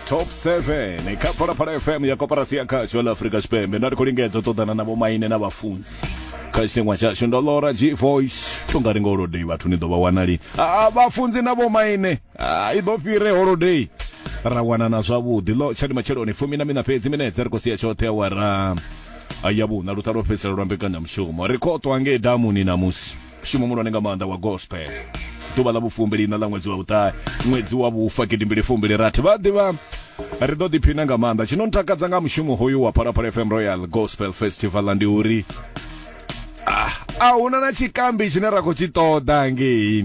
top 7 kha phalaphala fm ya koporasi ya khasho la afrika tshipembe nda ri khou lingedza u ṱoḓana na vhomaine na vhafunzi kha tshiteṅwa tshashu ndo lora g voice to nga ri nga holodei vhathu ni ḓo vha wanali a vhafunzi na vhomaine i ḓo fhire holodei ra wanana zwavhuḓi lo tshadi matsheloni fumi na mina fhedzi minetse ri khou sia tshoṱhe awara ya vhuṋa luṱa lwo fhedzisela lwa mbekanyamushumo ri khou ṱwa ngei damuni namusi mushumo muhulwane nga maanḓa wa gospel ḓuvha ḽa vhufumbili na ḽa ṅwedzi wa vhuṱahe ṅwedzi wa vhufa gidimbili fumbili rathi vha ḓivha ri ḓo ḓiphina nga maanḓa tshi no ntakadza nga mushumo hoyu wa phalaphala fm royal gospel festival ndi uri ah, a huna na tshikambi tshine ra khou tshi ṱoḓa ngei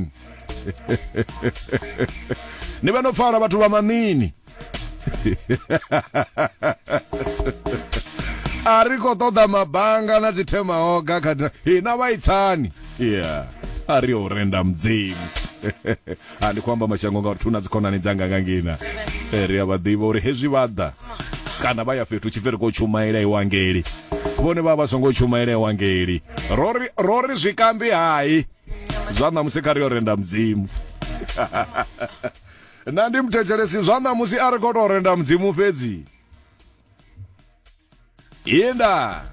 ni vhe no pfala vhathu vha maṋini a ri khou ṱoḓa mabanga na dzithemahoga kha hina vhaitsani yeah a ri yo renda mudzimu a ndi khou amba mashango ngauri thuna dzikhonani dzanga nga ngina eh, ri a vha ḓivha uri hezwi vha ḓa kana vha ya fhethu tshipfi ri khou tshumaela iwangeli vhone vha vha songo tshumaela iwangeli ro ri zwikambi hai zwa ṋamusi kha ri yo renda mudzimu Nṋe ndi muthetshelesi zwa ṋamusi a ri khou tou renda mudzimu fhedzi inda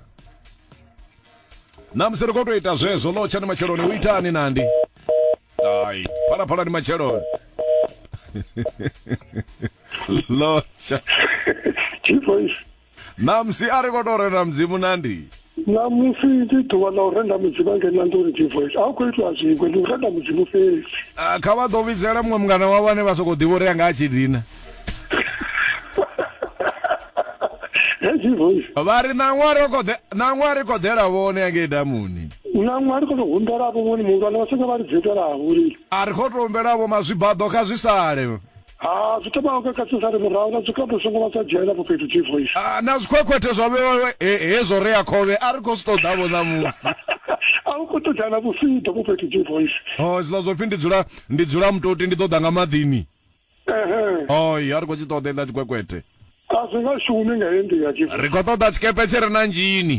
ṋamusi ri khou tou ita zwezwo ḽo tshani matsheloni u itani nandi ai phalaphalani matsheloni lotsha Chief Voice. Ṋamusi a ri khou tou renda mudzimu na ndi ṋamusi ndi ḓuvha ḽa u renda mudzimu a ngena nḓuni divoice a u khou itiwa zwiṅwe ndi u renda mudzimu fhedzi Ah, kha vha ḓo vhidzela muṅwe mungana wavho ane vha sokou ḓivha uri anga a tshi dina hezwi voice vha ri ṋaṅwa ro khou ḓe- ṋaṅwa ri khou ḓela vhone ya ngei damuni ṋaṅwe a ri khou tou humbela vho vhoni muhulwane vha songo vha ri dzhetelaho uri a ri khou tou humbela vho mazwibaḓo kha zwi sale ha zwi thoma u kakasesani murahu na zwikhato songo vha sa dzhena fho fhethu chief voice Ah, na zwikhwekhwethe zwa vhewa he- hezwo rea khovhe a ri khou zwi ṱoḓavho ṋamusi a u khou ṱoḓana vhusiḓo fho fhethu chief voice o zwiḽa zwo pfhi ndi dzula ndi dzula mutoti ndi ṱoḓa nga maḓini ehe oi a ri khou tshi ṱoḓa iḽa tshikwekwethe a zwi nga shumi nga heyi nḓila chief ri khou ṱoḓa tshikepe tshi re na nzhini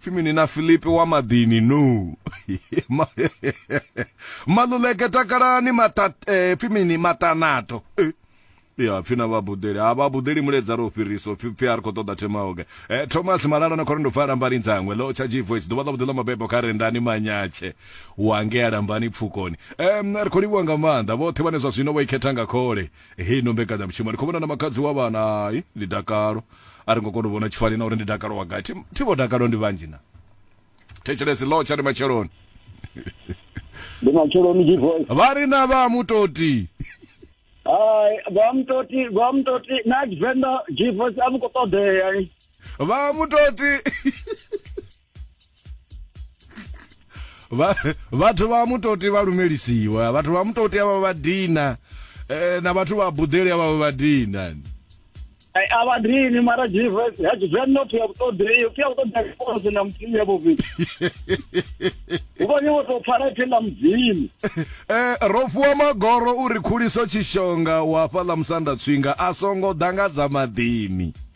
pfi mini na filipi wa maḓini no maluleke takalani eh, pfi mini maṱanato eh, ya pfi na vhabudeli ha vhabudeli muledza ro fhiriso pfi pfi a ri khou ṱoḓa themaoge e eh, thomas malala na khorendo pfa lambani dzangwe lo tsha gvoice ḓuvha ḽa vhuḓela mabebo kha rendani manyatshe wange a lambani pfukoni um ri khou livhuwa nga maanḓa vhoṱhe vhane zwa zwino vho ikhetha nga khole hei no mbekanyamushumo ndi khou vhona na makadzi wa vhana hai ndi dakalo a ri ngo kona u vhona tshifani na uri ndi dakalo wa gai Thi- thi vho dakalo ndi vhanzhi na thetshelesi lo tsha ndi matsheloni ndi matsheloni divoice vha ri na vha mutoti hai vha mutoti vha mutoti na tshivenḓa divoice a vhu khou ṱoḓea vha mutoti Vha- vhathu vha mutoti vha lumelisiwa vhathu vha mutoti avha vha dina eh, na vhathu vha buḓeli avha vha vha dina Eh, a vha dini mara jesus ya tshivenḓa u pfhi ya vhuṱoḓei u pfhi ya vhuṱoḓei akose na mudzimu ya vhuvhili u vhonye wo tou pfala ipfhi ḽa mudzimu Eh, ro fhiwa magoro uri khuliso tshishonga wa fhaḽa musanda tswinga a songo ḓa nga dza maḓini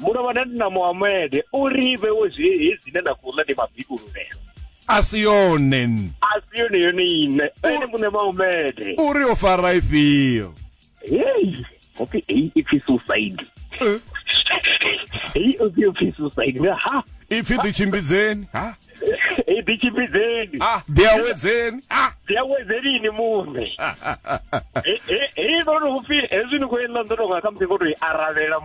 muno vha na muhamede u ri vhewe zwi hedzi ne na khou ḽa ndi mabikululelo a si yone a si yone yone ine ene muṋe maumede uri o fara ifhio hei hopfi hei ipfi suicide eh. hei opfi opfi suicide ha ipfi ḓitshimbidzeni ha i ḓi tshimbidzeni ah ḓi awedzeni ah ḓi awedzeni ini muṋe hei no ri upfi hezwi ni khou yenda ndo tonga kha musi ngo to i aravhela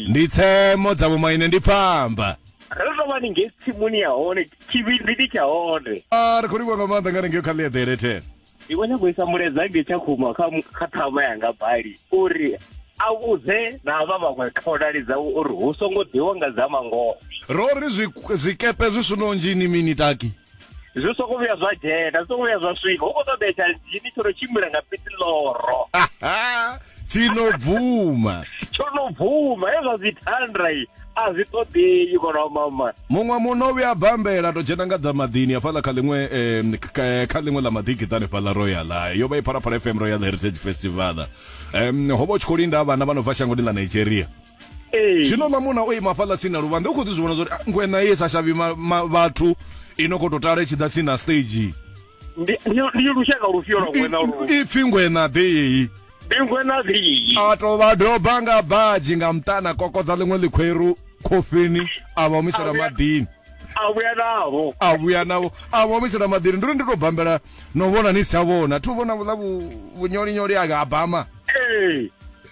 ndi tsemo dza vhomaine ndi pfamba ro tou vha ni ngei tsimuni ya hone tshivhindi ndi tsha hone ah, ri khou livhuwa nga maanḓa nga ri ngeo kha ḽiaḓele thena ndi khou nyanga u isa mulaedza nge tsha khuma kha kha ṱhama yanga bali uri a vhudze na havha vhaṅwe khonani dzawe uri hu songo ḓiwa nga dza mangoho ro ri zwi- zwikepe zwi swino nzhini mini taki zwi songo vhuya zwa dzhena zwi songo vhuya zwa swika hu khou ṱoḓea tsha dzhini tsho no tshimbila nga pitiloro tsino bvuma tsho no bvuma hezwa zwi thandra a zwi ṱoḓei kono mama muṅwe muno vhuya bambela to dzhena nga dza maḓini hafhaḽa kha ḽiṅwe kha ḽiṅwe ḽa maḓigiṱane fhaḽa royal yo vha i phalaphala fm royal heritage festival um ho vha u tshi khou linda vhana vha no bva shangoni ḽa nigeria zwino ḽa muna o ima fhaḽa tsini na luvhanḓe u khou ḓi zwi vhona zwa uri ngwena ye sa shavhi vhathu i no khou tou tala i tshi ḓa tsini na stage ndi ndi- ndi lushaka lufhio lwa ngwena lu I- ipfi ngwena ḓei ndi ngwena ḽii a to vha doba nga badzhi nga mutana kokodza ḽiṅwe ḽikhweru khofheni a vha humisela maḓini a vhuya navho a vhuya navho a vha humisela maḓini ndi uri ndi to bambela no vhona ni si a vhona thi u vhona vhuḽa vhu- vhunyolinyoli a bama ee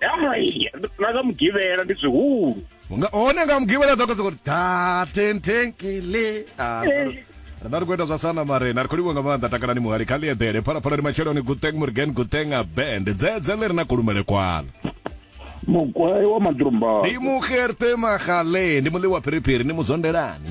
hai na nga mugivhela ndi zwihulu nga hone nga mugivhela ḓo kodza kuti da tentenkele Ah, ri ḓo- ri ḓo ri khou ita zwa sana marena ri khou livha nga maanḓa takalani muhali kha ḽieḓele phalaphala ndi matsheloni guteng murgen guteng a band dzedze ḽi ri na kulumele kwalo mugwayi wa maḓurumba ndi mugerte magale ndi muḽi wa phiriphiri ni muzondelani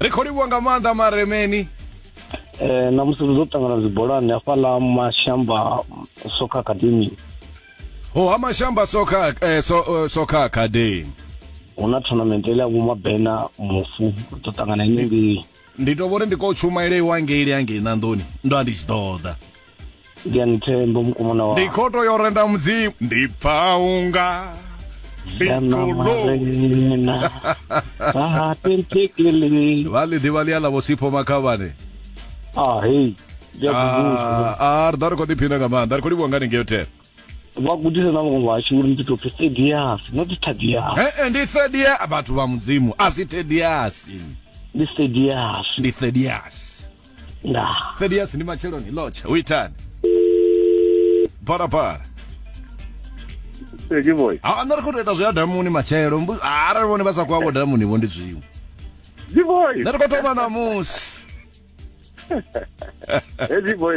ri khou livhuwa nga maanḓa maremeni eh na musi ri ḓo ṱangana dzibolani hafhaḽa mashamba soccer academy ho ha mashamba soccer eh, so, uh, soccer academy hu na tournament ile ya vhumabena mufu ri ḓo ṱangana ine ngei ndi to vhori ndi ko tshumaile iwa ngei ya ngei nandoni ndo a ndi tshi ḓoḓa ndi anithembo mukomana wa ndi khoto yo renda mudzimu ndi pfa unga ndikolomarena ahatentekele vha ḽi ḓivha ḽi a ḽa vhosipho makhavhane a hei ndi a kubusa Ah, ah, ri ḓa ri khou ḓiphina nga maanḓa ri khou livhuwa ngani ngeo ten vha gudisa na vhaṅwe vhashu uri ndi tou pfi sedias not tadias ee ndi thedia vhathu vha mudzimu a si tediasi ndi sedias ndi thediasi nda thedias ndi matsheloni lotsha u itani parapara Eki boy. a nṋe ri khou tou ita zwi ya damuni matshelo mbu- a arali vhone vha sa khou avho damuni vho ndi zwiṅwe Eki boy. nṋe ri khou thoma ṋamusi Eki boy.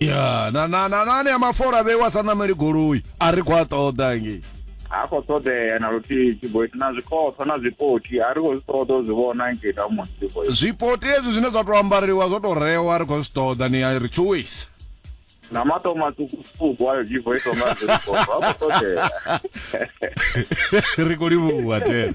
ya na na na nane ya mafola vhewa sa nameli goloi a ri khou a ṱoḓa ngei ha khou ṱoḓea na luthihi tshiboiti na zwikhotho na zwipoti a ri khou zwi ṱoḓa u zwi vhona ngei tamuni tshiboiti zwipoti hezwi zwine zwa tou ambariwa zwo tou rewa ri khou zwi ṱoḓa ni a ri tshuwisa na mato maṱukuṱuku ayo tshiboiti onga zwikhotho ha khou ṱoḓea ri khou livhuwa tena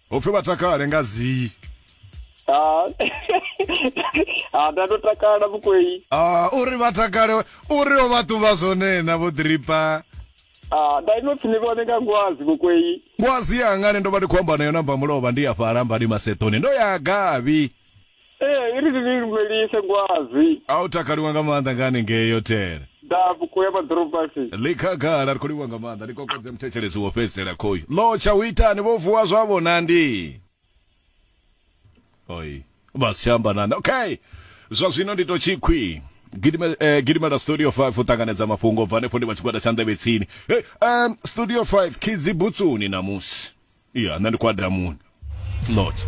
upfi vha takale nga zii Ah, ah, nda ndo takala vhukwei Ah, uri vha takale uri o vha ṱuvha zwone na vho dripa Ah, nda ino pfi ni vhone nga ngwazi vhukwei ngwazi yangani ndo vha ndi khou amba nayo namba mulovha ndi ya fhala mbani masetoni ndo ya gavi ee i ri ni lumelise ngwazi a u takaliwa nga maanḓa nga hanengei yo tere dafu kuya maḓorobasi ḽi khagala ri khou livhuwa nga maanḓa ni kokodze muthetsheledzo wo fhedzisela khoyu lotsha hu itani vho vuwa zwavho nandi oi vha si amba nandi okay zwa zwino ndi to tshikhwi Gidime- eh, gidimela studio 5 u ṱanganedza mafhungo u bva hanefho ndi vha tshigwada tsha nḓevhe tsini hey, um, studio 5 khidzi butsuni namusi ya nṋe ndi kwa damuni lotsha